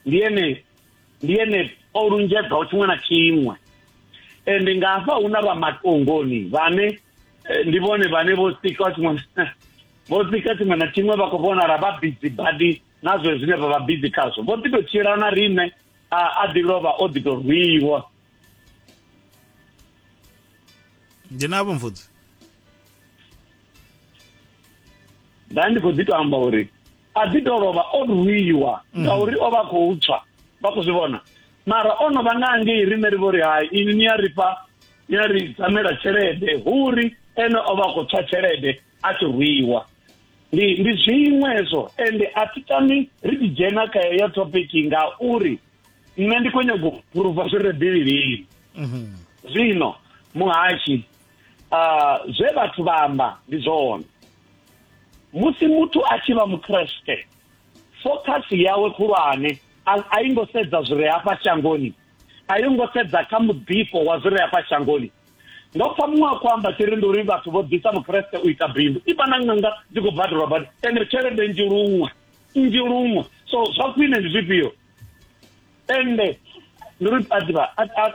ndi ene ndi ene o lunzhedzaho tshiṅwe na tshiṅwe ende nga hafha hu na vha matongoni vhane eh, ndi vhone vhane vho sika tshiṅwe vho sika tshiṅwe na tshiṅwe vha khou vhonala vha bizi badi na zwe zwine vha vha bizi khazwo vho ḓi tou tshila na riṋe a ḓi lovha o ḓi tou rwiwa ndi navho mfudzi nda ndi khou ḓi to amba uri a ḓi tou lovha o rwiwa mm. ngauri o vha a khou tswa vha khou zwi vhona mara o no vha nga angei riṋe ri vho ri hai ini ni a ri fha ni a ri dzamela tshelede huri ene o vha a khou tswa tshelede a tshi rwiwa ndi ndi zwiṅwe hezwo ende a thi tami ri tshi dzhena kha heyo topiki ngauri nṋe ndi khou nyago u phuruva zwi re bivhilini mhm. zwino muhashi um zwe vhathu vha amba ndi zwone musi muthu a tshi vha mukreste focus yawe khulwane a i ngo sedza zwi re hafha shangoni a yo ngo sedza kha muḓifho wa zwi re hafha shangoni ndo pfa muṅwe a khou amba tshi ri ndi uri vhathu vho ḓisa mukreste u ita bindu i vha na ṅanga dzi khou badelwa badi ende tshelede nzhi luṅwe nzhi luṅwe so zwa khwine ndi zwifhio ende ndi uri a ḓivha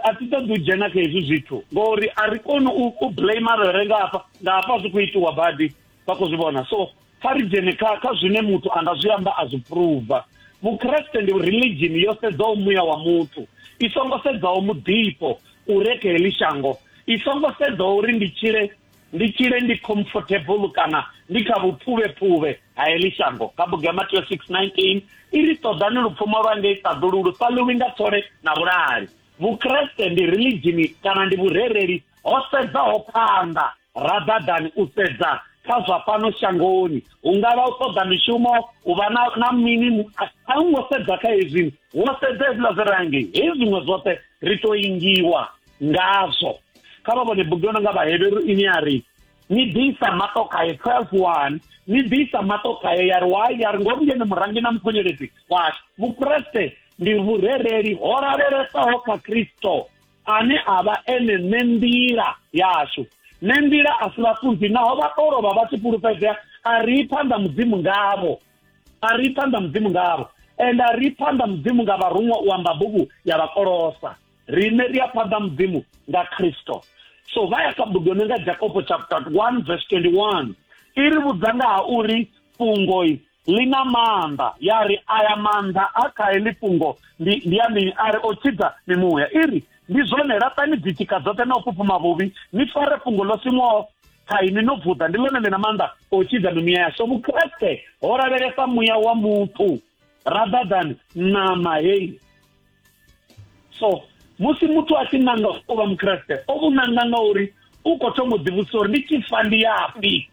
a thi ṱoḓi u dzhena kha hezwi zwithu ngori a ri koni u blame arere nga hafha nga hafha zwi khou itiwa badi vha khou zwi vhona so kha ri dzhene kha kha zwine muthu a nga zwi amba a zwi pruva vukreste ndi religion yo sedzaho muya wa muthu i songo sedzaho muḓifho u re kha heḽi shango i songo sedzaho uri ndi tshile Ndi tshile ndi comfortable kana ndi kha vhuphuvhephuvhe ha heḽi shango. Kha bugu ya Mateo 6:19 i ri, Ṱoḓani lupfumo lwa ngei ṱaḓulu lu sa ḽiwi nga thole na vhulahali. Vhukreste ndi rilidzhini kana ndi vhurereli ho sedzaho phanḓa. Ra ḓaḓani u sedza kha zwa fhano shangoni, hu nga vha u ṱoḓa mishumo, u vha na, na mini. A u ngo sedza kha hezwi, wo sedza hezwiḽa zwi re hangei. Hezwi zwiṅwe zwoṱhe ri tou ingiwa. ngazwo kha vha vhone bugu yo no nga vhaheberu ine ya ri ni ḓisa maṱo khaye 12 one ni ḓisa maṱo khaye ya ri wai ya ri ngo vhuyene murangi na mukhonyeledzi washu vukreste ndi vhurereli ho lavhelesaho kha kristo ane a vha ene nṋe nḓila yashu nṋe nḓila a si vhafunzi naho vha tou lovha vha tshi fhulufhedzea a ri phanḓa mudzimu ngavho a ri phanḓa mudzimu ngavho and a ri phanḓa mudzimu nga vharuṅwa u amba bugu ya vhakolosa rine ri a phanḓa mudzimu nga khristo so vha ya kha bugu yone nga jakobo chapter 1 verse 21 i ri vhudza nga ha uri fhungoi ḽi na maanḓa ya ri aya maanḓa a kha heḽi fhungo ndi ndi ya mini a ri o tshidza mimuya i ri ndi zwone laṱani dzitshika dzoṱhe na u fhufhuma vhuvhi ni fare fhungo ḽo siṅwaho kha ini no vuḓa ndi ḽone ḽi na maanḓa o tshidza mimuya ya so vukreste ho lavhelesa muya wa muthu rather than ṋama heyi so musi muthu a tshi nanga u vha mukreste o vhu nanga nga uri u khou thoma u ḓivhudzisa uri ndi tshi fa ndi yafhi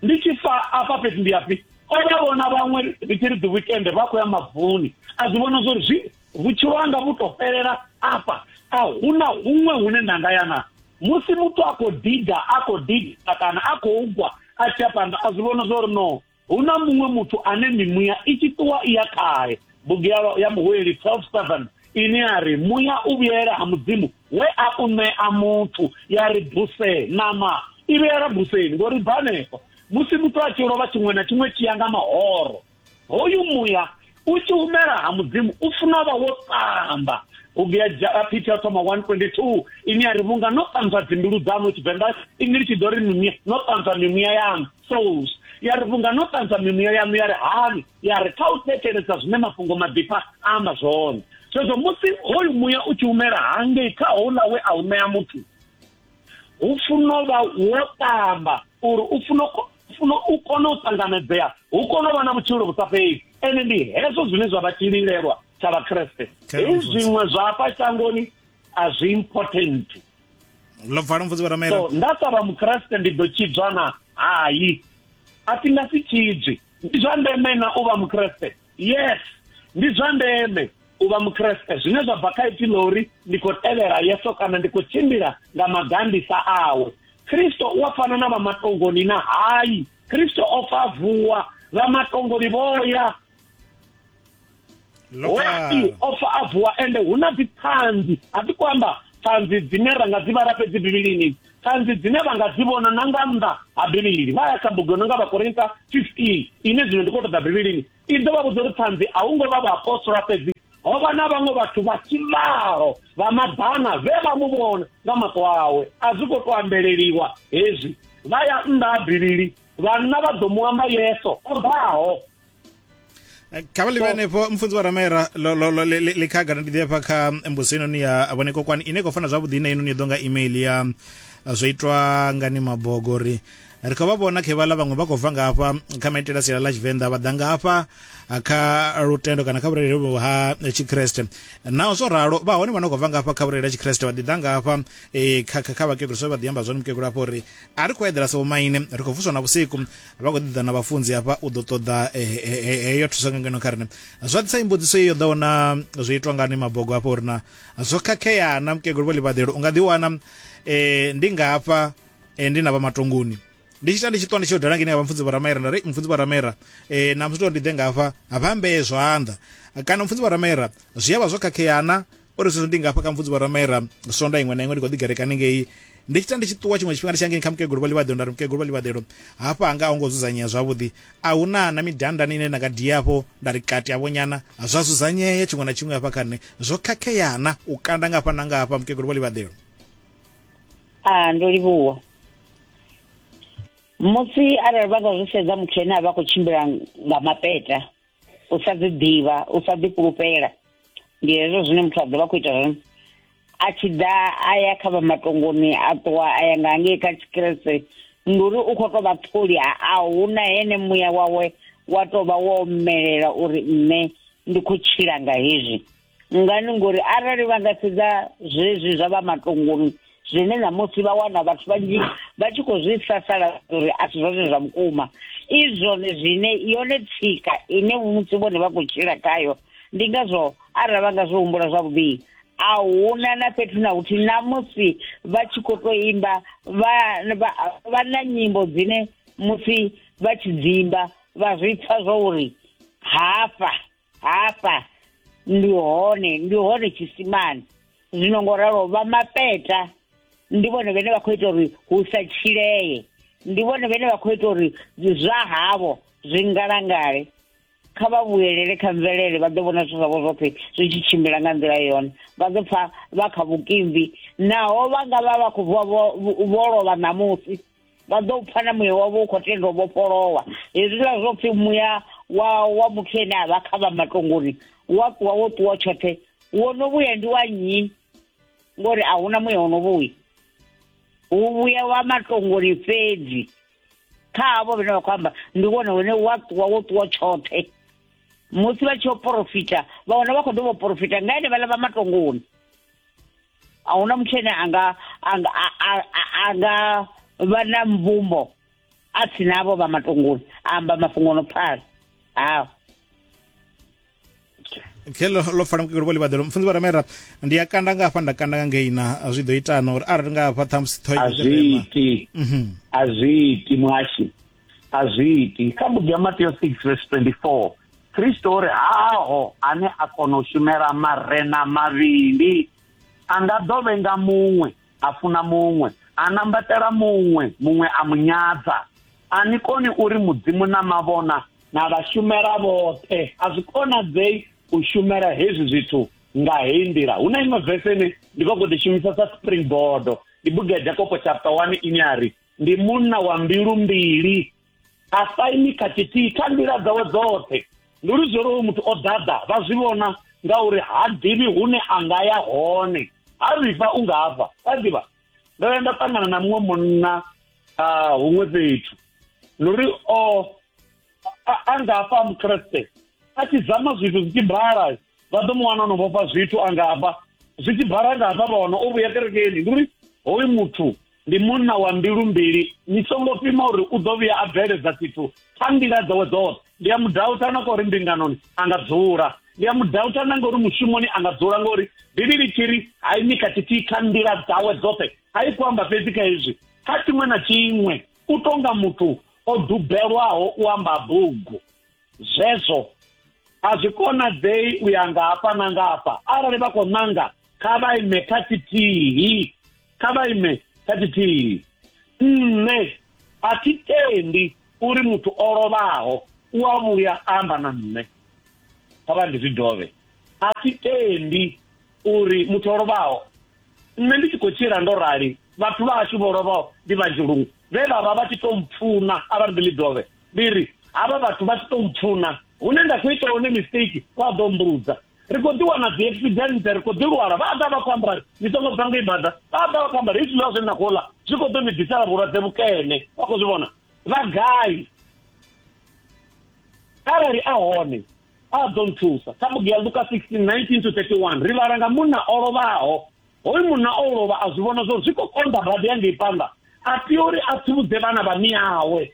ndi tshi fa afha fhethu ndi yafhi o vha vhona vhaṅwe ri tshi ri ḓi wikende vha khou ya mavuni a zwi vhona zwori zwi vhutshilo hanga vhu to fhelela afha a hu na huṅwe hune nda nga ya na musi muthu a khou diga a khou diga kana a khou gwa a tshi ya phanḓa a zwi vhona zwori no hu na muṅwe muthu ane mimuya i tshi ṱuwa i ya khae bugu ya, ya muhueli 12 ine ya ri muya u vhuyela ha mudzimu we a u ṋea muthu ya ri buse nama i vhuyela buseni ngori bva hanefho musi muthu a tshi lovha tshiṅwe na tshiṅwe tshi ya nga mahoro hoyu muya u tshi humela ha mudzimu u funa vha wo tamba bugu ya Peter ya thoma 122 ine ya ri vhunga no ṱanzwa dzimbilu dzanu tshivenḓa ini litshi ḓo ri mimuya no ṱanzwa mimuya yanu souls ya ri vhunga no ṱanzwa mimuya yanu ya ri hani ya ri kha u thetshelesa zwine mafhungo maḓifha a amba zwone zwezwo musi hoyu muya u tshi humela hangei kha houḽa we a u ṋea muthu hu funa u vha wo ṱamba uri u funa funa u kone u ṱanganedzea hu kone u vha na vhutshilo vhu sa fheli ene ndi hezwo zwine zwa vha tshililelwa tsha vhakreste hei zwiṅwe zwa hafha shangoni a zwi important lo bvala mvudzi vharamela so nda sa vha mukreste ndi ḓo tshidzwa na hai a thi nga si tshidzwi ndi zwa ndeme na u vha mukreste yes ndi zwa ndeme u vha mukreste zwine zwa bva kha ipfi ḽa uri ndi khou tevhela yeso kana ndi khou tshimbila nga magandisa awe kristo u a fana na vha matongoni na hayi kristo o fa vuwa vha matongoni vho ya hoyai o fa a vuwa ende hu na dziṱhanzi a ḓi kho amba ṱhanzi dzine ra nga dzi vhala fhedzi bivhilini Ṱhanzi dzine vha nga dzi vhona na nga nnḓa ha Bivhili vha ya kha bugu yo no nga Vhakorinta 15 ine zwino ndi khou ṱoḓa Bivhilini i ḓo vha vhudza uri ṱhanzi a hu ngo vha vhaapostola fhedzi ho vha na vhaṅwe vhathu vha tshivhalo vha maḓana vhe vha mu vhona nga maṱo awe a zwi khou tou ambeleliwa hezwi vha ya nnḓa ha Bivhili vhanna vha ḓo mu amba Yesu o ḓaho eh, kha vha ḽivhe henefho mfunzi wa ramera ḽikhagana ndi ḓi hafha kha mbuso inoni ya vhone kokwani ine khou fana zwavhuḓi ine inoni ya ḓo nga email ya eh, zwo itwa ngani mabogo ri ri khou vha vhona khe vhala vhaṅwe vha khou bva nga hafha kha maitele a siala ḽa tshivenḓa vha ḓa nga hafha eh, kha lutendo kana kha vhurereli vhu ha eh, tshikreste naho zwo ralo vha hone vha no khou bva nga hafha kha vhurereli ha tshikreste vha ḓi ḓa nga hafha eh, kha vhakegulu so vha ḓi amba zwone mukegulu hafha uri a ri khou eḓela sa vhomaine ri khou vuswa na vhusiku vha khou ḓiḓa na vhafunzi hafha u ḓo ṱoḓa eh, eh, eh, heyo thuso nga ngeno kha rine zwa ḓisa imbudziso iyo ḓaho na zwo itwa ngani mabogo hafha uri na zwo khakhea na mukegulu vho ḽivhaḓelo u nga ḓiwana um ndi nga hafha ndi na vha matongoni ndi tshi ta ndi tshi ṱwa ndi tshi yo dala ngeni ya vhamfunzi vharamera nda ri mfunzi vharamera um na musi tori ndi ḓe nga hafha vha mbee zwanḓa kana mfunzi vharamera zwi a vha zwo khakheana uri zwezwo ndi ngafha kha mvudzi vho ramaira sonda iṅwe na iṅwe ndi khou ḓigereka haningei ndi tshi ta ndi tshi ṱuwa tshiṅwe tshifhinga ndi tshi hangei kha mukegulu vha ḽivhaḓelo nda ri mukegulu vha ḽivhaḓelo hafha hanga a hu ngo dzudzanyea zwavhuḓi a hu na na midandani ine nda nga dia afho nda ri kati avho nyana zwa dzudzanyea tshiṅwe na tshiṅwe hafha kha nṋe zwo khakheana u kanda nga hafha na nga hafha mukegulu vha ḽivhaḓelo a ndo livhuwa musi arali vha nga zwi sedza muthu ene a vha khou tshimbila nga mapeta u sa ḓi ḓivha u sa ḓi fhulufhela ndi hezwo zwine muthu a ḓovha khou ita zwone a tshi ḓa a ya kha vha matongoni a ṱuwa a ya nga hangei kha tshikrese ndi uri u khou tou vha ṱholi a huna hene muya wawe wa tou vha wo omelela uri nṋe ndi khou tshila nga hezwi ngani ngori arali vha nga sedza zwezwi zwa vha matongoni zwine ṋamusi vha wana vhathu vhanzhi vha tshi khou zwi sasala uri a si zwone zwa vhukuma i zwone zwine yone tsika ine musi vhone vha khou tshila khayo ndi ngazwo arali vha nga zwi humbula zwavhuḓi a huna na fhethu na huthi ṋamusi vha tshi khou tou imba vha na nyimbo dzine musi vha tshi dzimba vha zwi pfa zwo uri hafha hafha ndi hone ndi hone tshisimani zwino ngo ralo vha mapeta ndi vhone vhene vha khou ita uri hu sa tshilee ndi vhone vhene vha khou ita uri zwa havho zwi ngalangale kha vha vhuyelele kha mvelele vha ḓo vhona zwithu zwavho zwoṱhe zwi tshi tshimbila nga nḓila yone vha ḓo pfa vha kha vhukimbi naho vha nga vha vha khou vuwa vho vho lovha ṋamusi vha ḓo pfa na muya wavho u khou tenda u vhofholowa hezwiḽa zwo pfhi muya wa wa muthu ene a vha kha vha matongoni wa ṱuwa wo ṱuwa tshoṱhe wo no vhuya ndi wa nnyi ngori a huna muya wo no vhuya hu vhuya wa matongoni fhedzi kha havho vhene vha khou amba ndi wone wene wa ṱuwa wo ṱuwa tshoṱhe musi vha tshi yo porofita vha wana vha khou dovha u porofita nga ene vhaḽa vha matongoni a huna muthu ene anga anga anga vha na mvumbo a si navho vha matunguni amba mafhungo no pfala hawo khe lo fana kukelo vho ḽivhaḓelo mufunzi vha ramera ndi a kanda nga hafha nda kanda nga ngei na zwi ḓo itana uri arali nga hafha ṱhamusi ṱhoazwiiti mhm. azwiiti muhashi a zwi iti kha bugu ya mateo 6 vhesi 24 kristo o ri haho ane a kona u shumela marena mavhili a nga ḓo vhenga muṅwe a funa muṅwe a nambatela muṅwe muṅwe a mu nyadza a ni koni uri mudzimu na mavhona na vhashumela vhoṱhe a zwi konadzei u shumela hezwi zwithu nga heyi nḓila hu na iṅwe vese ine ndi vha khou ḓi shumisa sa springboard ndi bugu ya jakopo chapter one ine a ri ndi munna wa mbilu mbili a sa imi kha tshithihi kha nḓila dzawe dzoṱhe ndi uri zwo ri uyu muthu o ḓaḓa vha zwi vhona ngauri ha ḓivhi hune a nga ya hone ha vhifha u nga hafha wa ḓivha ndo ya nda ṱangana na muṅwe munna ah, huṅwe fhethu ndi uri o a- a nga hafha a mukreste a tshi zama zwithu zwi tshi bala vha ḓo mu wana o no vhofha zwithu a nga hafha zwi tshi bala nga hafha vha wana o vhuya kerekeni ndi uri hoyu muthu ndi munna wa mbilu mbili ni songo pima uri u ḓo vhuya a bveledza tshithu kha nḓila dzawe dzoṱhe ndi a mudauta na ngori mbinganoni a nga dzula ndi a mudauta na ngori mushumoni a nga dzula ngori bivhili tshiri ha imi kha tshithihi kha nḓila dzawe dzoṱhe ha i kuamba fhedzi kha hezwi kha tshiṅwe na tshiṅwe u tonga muthu o dubelwaho u amba bugu zwezwo a zwi konadzei u ya ngafha na ngafha arali vha khou ṋanga kha vha ime kha tshithihi kha vha ime kha tshithihi nṋe a thi tendi uri muthu o lovhaho u a vhuya amba na nṋe kha vha ndi zwi dovhe a thi tendi uri muthu o lovhaho nṋe ndi tshi khou tshila ndo rali vhathu vha ashu vho lovhaho ndi vhanzhi luṅwe vhe vha vha vha tshi to mpfuna a vha ndi ḽi dovhe ndi ri havha vhathu vha tshi to mpfuna hune nda khou ita hone mistake vha ḓo mbudza ri khou ḓi wana dzi accident ri khou ḓi lwala vha ḓa vha khou amba ri ni songo bva ngei bada vha ḓa vha khou amba ri i zwiḽiwa zwine na khou ḽa zwi khou ḓo ni ḓisela vhulwadze vhukene vha khou zwi vhona vha gai arali a hone a ḓo nthusa kha bugu ya luka 1619 to 31 ri vhala nga munna o lovhaho hoyu munna o lovha a zwi vhona zwori zwi khou konḓa badi ya ngei phanḓa a tea uri a tsivhudze vhana vha miawe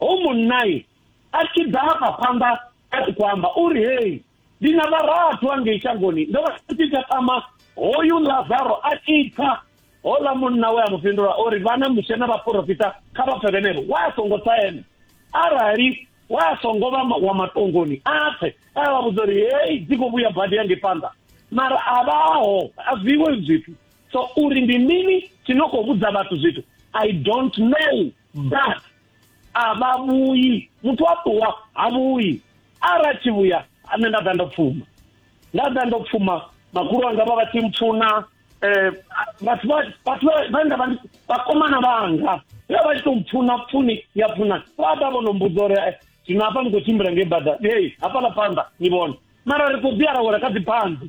ho munnai a tshi ḓa hafha phanḓa a tshi khou amba uri hei ndi na vharathu angei shangoni ndo vha tshi takama hoyu lazaro a tshi pfa hola munna we a mu fhindula o ri vhana mushe na vhaporofita kha vha pfe vhenevho wa a songo tsa ene arali wa a songo vha wa matongoni a pfe a vha vhudza uri hei dzi khou vhuya badi yange phanḓa mara a vhaho a zwiwe zwithu so uri ndi mini tshi no khou vhudza vhathu zwithu i don't know but a vha vhuyi muthu a ṱuwa ha vhuyi ara tshi vhuya nṋe nda ḓa ndo pfuma nda ḓa ndo pfuma makhulu anga vha vha tshi mpfuna um vhathu vhathu vhanga vha vhakomana vhanga vha vha tshi to mpfuna pfuni ya pfuna vha ḓa vho no mbudza uri eh, zwino hafha ni khou tshimbila ngei bada ei hafhaḽa phanḓa ni vhone mara ri khou ḓi arawela kha dziphanḓi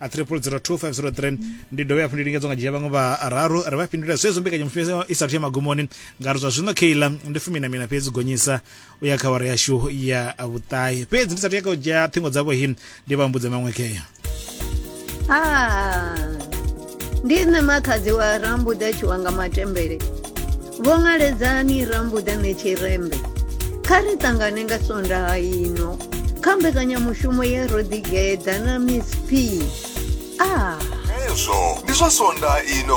a 302503 ndi dovhe hafhu ndi lingedza nga dzhia vhaṅwe vhararu ri vha fhindula zwezwo mbekanyamushumo i sathu ya magumoni nga ri zwa zwino keila ndi fumi na mina fhedzi gonyisa u ya kha wara yashu ya vhuṱahi fhedzi ndi sathu ya kha u dzhia ṱhingo dzavho hi ndi vha mbudze maṅwe keya ah, ndi nṋe makhadzi wa rambuḓa tshiwanga matembele vho ṅaledzani rambuḓane tshirembe kha ri ṱangane nga sondaha ino kha mbekanyamushumo ye ro ḓigeḓa na miss p a ah. ezwo ndi zwa sondaha ino